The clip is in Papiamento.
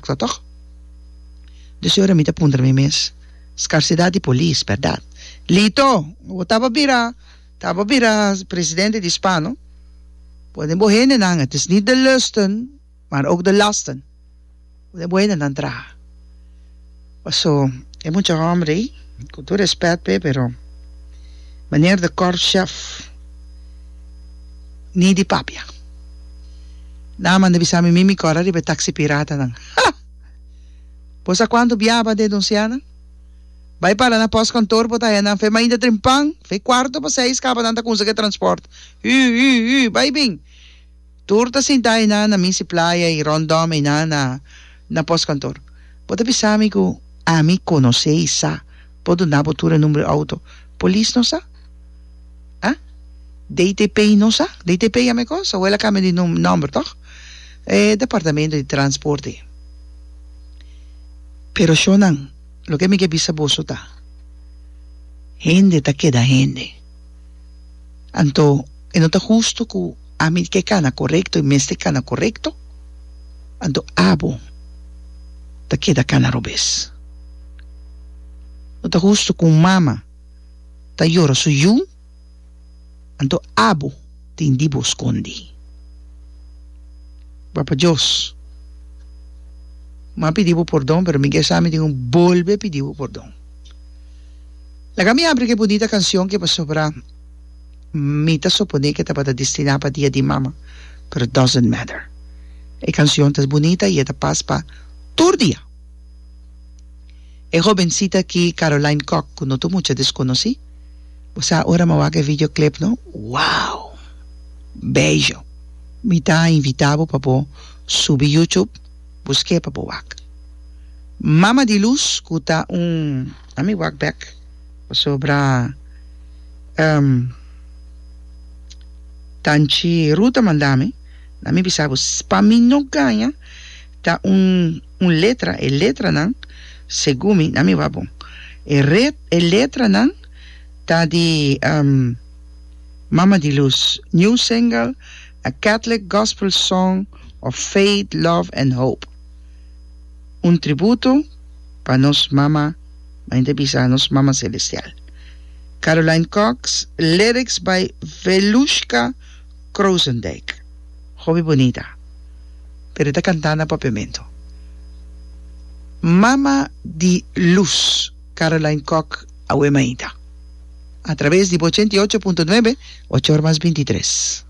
Ta tok? Des ora mi ta puntra mi mes, Skarsidat di polis, bèrdat? Lito! Bo taba bira, taba bira presidente di Spa, no? Bo den bo hendenan, het is niet de lusten, maar ook de lasten. Bo den bo hendenan traha. Paso e mucha homber ey, cu tur respet p'e, pero manier de korf chef ni di papia. Nan a manda bisa mi mimi kor ariba e taxi piratanan. Ha! Bo sa cuantu biaba den Donciana? Bay para na post kantoor bo ta haya nan fe mainta drin pan, fe cuarto pa seis kaba nan ta konsegi e transport. Hu! Hu! Hu! Bay bin! Tur ta sinta einan na Missy Playa y rondom einan na na postkantoor. Bo ta bisa mi cu ami conoce y sa bo duna bo tur e number di auto. Polis no sa? Ha? DTP no sa? DTP ya mecos? Awel a cambia di num nomber toch? E departamento di transporte. Pero shonan loke mi ke bisa boso ta hende ta keda hende. Anto e no ta hustu ku ami di ke kana korekto i mester kana korekto? Anto abo ta keda kana robes. No ta hustu ku un mama ta yora su yu, anto abo tin di bo skondi. Papa Dios, mi a pidi bo pordon, pero mi ke sa mi tin ku bolbe pidi bo pordon. Laga mi abri ku e bunita kanshon ku e pasobra mi ta suponé ku e tabata destiná pa Dia di Mama, pero doesn't matter. E kanshon ta bunita i e ta pas pa tur dia. E hobensita ki Caroline Kok, ku no ta mucha deskonosí. Bo sa ora mi a wak e video clip no? Wow! Bello! Mi ta invitá bo pa bo subi YouTube, busk'é pa bo wak. Mama di Luz, ku ta un. A mi wak bek pasobra ehm tanchi Ruth a manda mi na mi bisa bo pa mi no gaña ta un un letra e letranan segun mi na mi wak bo e ret e letranan ta di ehm Mama di Luz New Single A Catholic Gospel Song of Faith Love and Hope. un tributo pa nos mama, main ta bisa nos mama selestial. Caroline Cox, lyrics by Velushka Kroosendijk. Hopi bunita, pero e ta canta na papiamento. Mama di luz Caroline Cox awe mainta a traves di bo ochenta y ocho punto nuebe, ocho ora mas binti y tres.